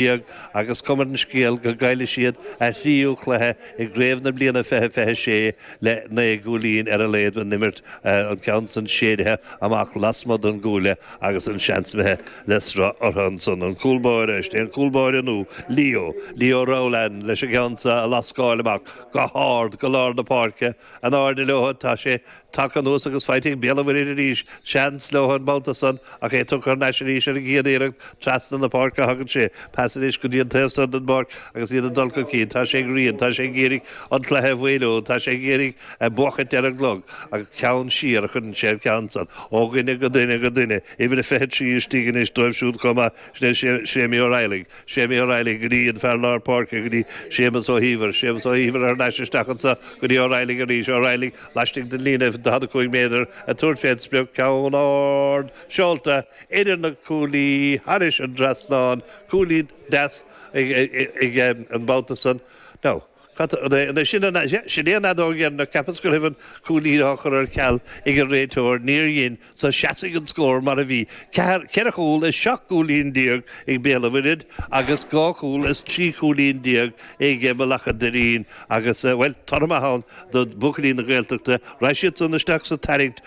Beag, agus cuma ar an scéal go gcaillfidh siad a thríú cluiche i gcraobh na bliana fiche, 26 le naoi gcúilín ar a laghad a n-imirt, an ceann san séidithe amach lasmuigh den gcuaille agus an seans imithe le sruth orthu ansan. An cúl báire, is é an cúl báire nó Leo, Leo Rowland, leis an gceann san a lascáil amach go hard go lár na páirce, In airde leo, tá sé tagtha anuas agus faighte ag Béal an Mhuirthid arís. Seans leo an babhta san ach é tugtha thar n-ais arís ar an gcéad iarracht. Trasna na páirce a thagann sé. Pas anois go dtí an taobh san den bpáirc agus iad ag dul chun cinn. Tá sé ag Riain. Tá sé ag iarraidh an cluiche a mhaolú. Tá sé ag iarraidh buachaint ar an gclog. Agus ceann siar a chuireann sé an ceann san. Ó dhuine go duine go duine. Uimhir a 23 istigh anois dóibh siúd chomh maith. Sin é Séimí Ó Raghallaigh. Séimí Ó Raghallaigh, go dtí an fear lár páirce, go dtí Séamus Ó hÍomhair, Séamus Ó hÍomhair thar n-ais isteach anso, go dtí Ó Raghallaigh arís, Ó Raghallaigh laistigh den líne daichead a cúig méadar ag tabhairt fé an sprioc, ceann ard seolta idir na cuaillí thairis an dtrasnán, cúilín deas aige an babhta san. Now. Cad é sin an ea? Sin é an fheadóg dheireanach, cheapas go raibh an cúilín á chur ar ceal ag an réiteoir. Níor dhein, so seasfaidh an scór mar a bhí, ceathair, ceithre chúl is seacht gcúilín déag ag Béal an Mhuirthead agus dhá chúl is trí chúilín déag ag Bealach an Doirín agus, bhuel, toradh maith ann do bhuachaillí na Gaeltachta. Raghaidh siadsan isteach sa tarraingt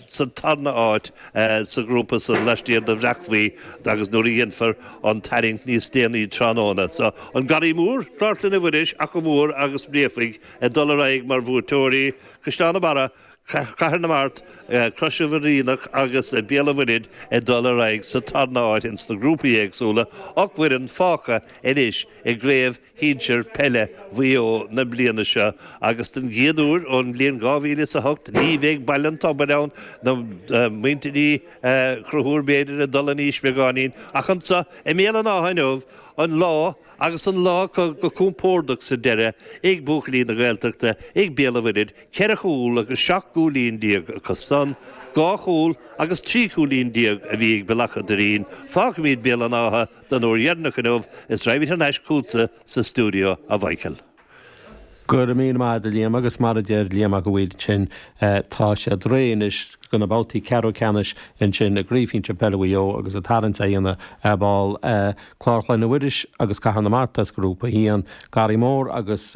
sa tarna áit sa ghrúpa san lastiar de Bhréachmhaigh agus nuair a dhéanfar, an tarraingt níos déanaí tráthnóna so. An Garraí Mór, Clár Chlainne Mhuiris, Achadh Mór agus Bréachmhaigh ag dul ar aghaidh mar bhuaiteoirí, Caisleán an Bharraigh, Cathair na Mart, Crois Mhaoilíona agus Béal an Mhuirthead ag dul ar aghaidh sa tarna áit ins na grúpaí éagsúla, ocht bhfoireann fágtha anois i gCraobh shinsir peile Mhaigh Eo na bliana seo agus den gcéad uair ón mbliain 2008 ní bheidh Baile an Tobair ann ná muintir Uí Chonchúir b'fhéidir ag dul in aois beagáinín ach anso i mBéal an Átha inniu an lá agus an lá acu go compordach sa deireadh ag buachaillí na Gaeltachta ag Béal an Mhuirthid, ceithre chúl agus seacht gcúilín déag acu san, dhá chúl agus trí chúilín déag a bhí ag Bealach a' Doirín, fágfaimid Béal an Átha Don uair dheireanach inniu is raghaimid thar n-ais chugatsa sa stiúideo, a Mhíchíl. Go raibh míle maith a'd, a Liam, agus mar a deir Liam Mac a' Mhaoir ansin, tá siad réidh anois do na babhtaí ceathrú ceannais ansin i gCraobh Shinsir Peile Mhaigh Eo agus an tarraingt á dhéanamh ar ball ag Clár Chlainne Mhuiris agus Cathair na Mart as Grúpa 1, Garraí Mór agus.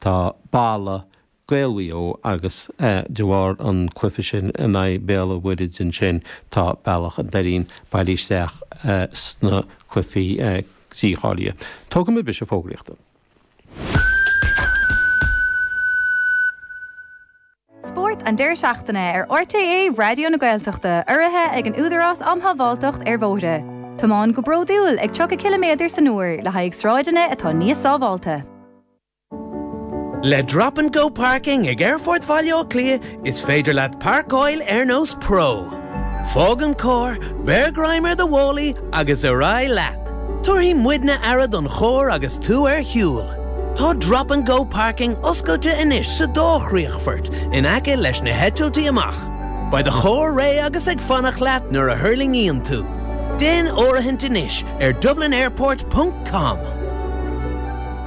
Tá Baile Ghaeil Mhaigh Eo agus de bharr an cluife sin in aghaidh Béal an Mhuirthead ansin tá Bealach an Doirín bailí isteach sna cluifí dícháilithe. Tógfaimid briseadh fógraíochta. Spórt an deireadh seachtaine ar RTÉ Raidió na Gaeltachta urraithe ag an Údarás Um Shábháilteacht ar Bhóithre. Tiomáin go bródúil ag 30 ciliméadar san uair le haghaidh sráideanna atá níos sábháilte. Le Drop and Go Parking ag Aerfort Bhaile Átha Cliath is féidir leat parcáil ar nós pro. Fág an carr, beir greim ar do mhálaí agus ar aghaidh leat. Tabharfaidh muidne aire don charr agus tú ar shiúl. Tá Drop and Go Parking oscailte anois sa dá chríochfort in aice leis na heitiltí amach. Beidh do charr réidh agus ag fanacht leat nuair a thuirlingíonn tú. Déan áirithint anois ar dublinairport ponc com.